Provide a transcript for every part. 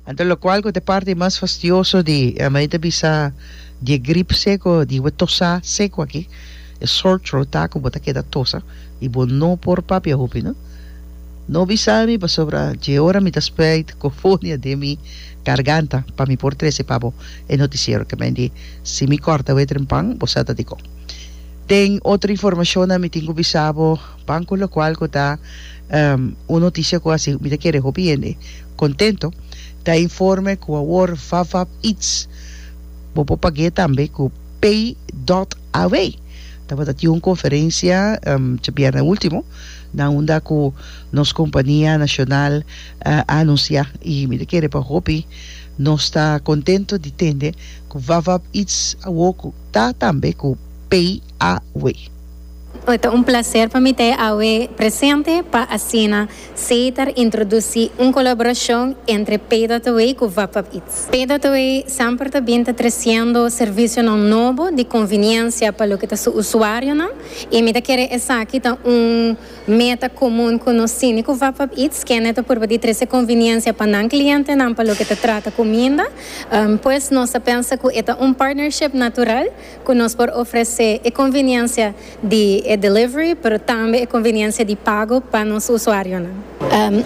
Anto locual cu ta e parti mas fastioso di mei ta bisa di e grip seco di bo tosa seco aki e sore throat ta cu bo ta keda tosa y bo no por papia hopi no no bisa mi pasobra dje ora mi ta spijt cofonia den mi garganta pa mi por trece pa bo e noticiero kiamente si mi corta wet rempan bo sa ta dicon den otro informacionnan mi tin cu bisa bo banco locual cu ta Un noticia cu a siu mi ta kere hopi hende contento ta e informe cu awor Vavap Eats bo por pag'e tambe cu Pay dot AW. Tabata tin un conferencia djabierna ultimo na unda cu nos compania nacional a anuncia y mi ta kere pa hopi nos ta contento di tende cu Vavap Eats awor cu ta tambe cu Pay AW. Ta un placer pa mi ta e awe presente pa asina Sater introduci un colaboracion entre Paydataway cu Vapap Eats. Paydataway semper ta bin ta treciendo servicionan nobo di conveniencia pa loke ta su usuarionan y mi ta kere esaki ta un meta comun cu nos tini cu Vapap Eats, kende ta purba di trece conveniencia pa nan clientenan pa loke ta trata cuminda, pues nos ta pensa cu e ta un partnership natural. ku nos por ofresé e konveniensia di e delivery pero tambe e konveniensia di pago pa nos usuarionan.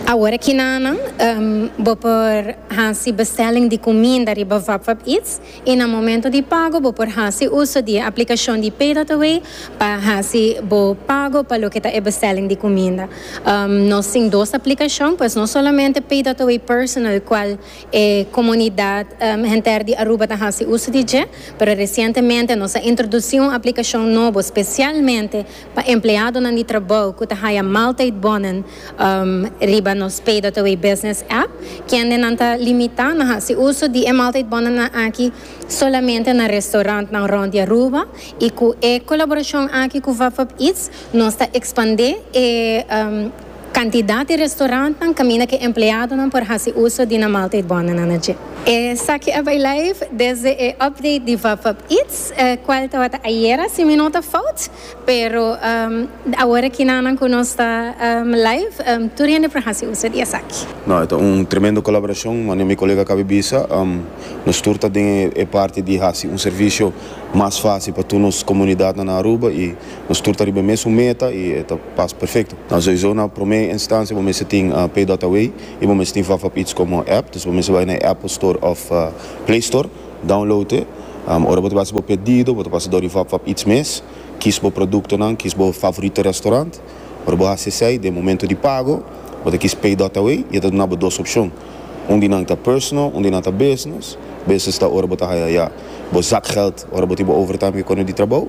Awor aki na Anan bo por hasi bestelling di kuminda riba VapVap Eats i na momento di pago bo por hasi uso di e aplikashon di PayDotAway pa hasi bo pago pa loke ta e bestelling di kuminda. Nos tin dos aplikashon pues no solamente PayDotAway Personal kual E komunidat henter di Aruba ta hasi uso di dje, pero resientemente nos a introdusí un aplikashon nobo spesialmente pa empleadonan di trabou ku ta haya mal tydbonnen riba nos PayDotAway Business App, kendenan ta limitá na hasi uso di e mal tydbonnennan aki solamente na restorantnan rònt di Aruba i ku e kolaborashon aki ku VapVapEats nos ta ekspandé e Kantidat di restorantnan kaminda ku e empleadonan por hasi uso di nan maaltijdbòndenan na dje. Esaki a bai live desde e update di Vapap Eats, e kual tabata ayera si mi no ta fout, pero awor aki na nan ku nos ta live tur hende por hasi uso di esaki. No, e ta un tremendo kolaborashon, manera mi kolega kaba bisa. Nos tur ta den e parti di hasi un servisio mas fásil pa tur nos komunidatnan na Aruba i. Nos tur ta riba e mesun meta i e ta pas perfecto. Na soiso na prome instancia bo mester tin PayDotAway i bo mester tin Vafapits como app. Dus bo mester bai na e Apple Store of Play Store, download e. Ora bo ta bai haci bo pedido, bo ta pasa dor di Vafapits mes, kis bo productonan, kis bo favorito restaurant. Ora bo haci esey, den momento di pago, bo ta kis PayDotAway i e ta duna bo dos opcion. Un di nan ta personal, un di nan ta business. Business ta ora bo ta haya ya bo zakgeld, ora bo tin bo overtime cu e cona di trabao.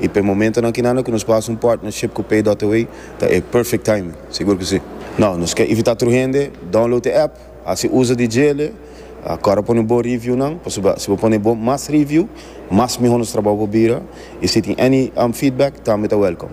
y p'e momentonan kinanda cu nos por haci un partnership cu Pay.away ta e perfect timing, sigur cu si. No, nos ke invita tur hende, download e app, haci uzo di djele, a cora pone bo reviewnan, pasobra si bo pone bo mas review, mas mihor nos trabao por bira, y si tin any feedback tambe ta welcome.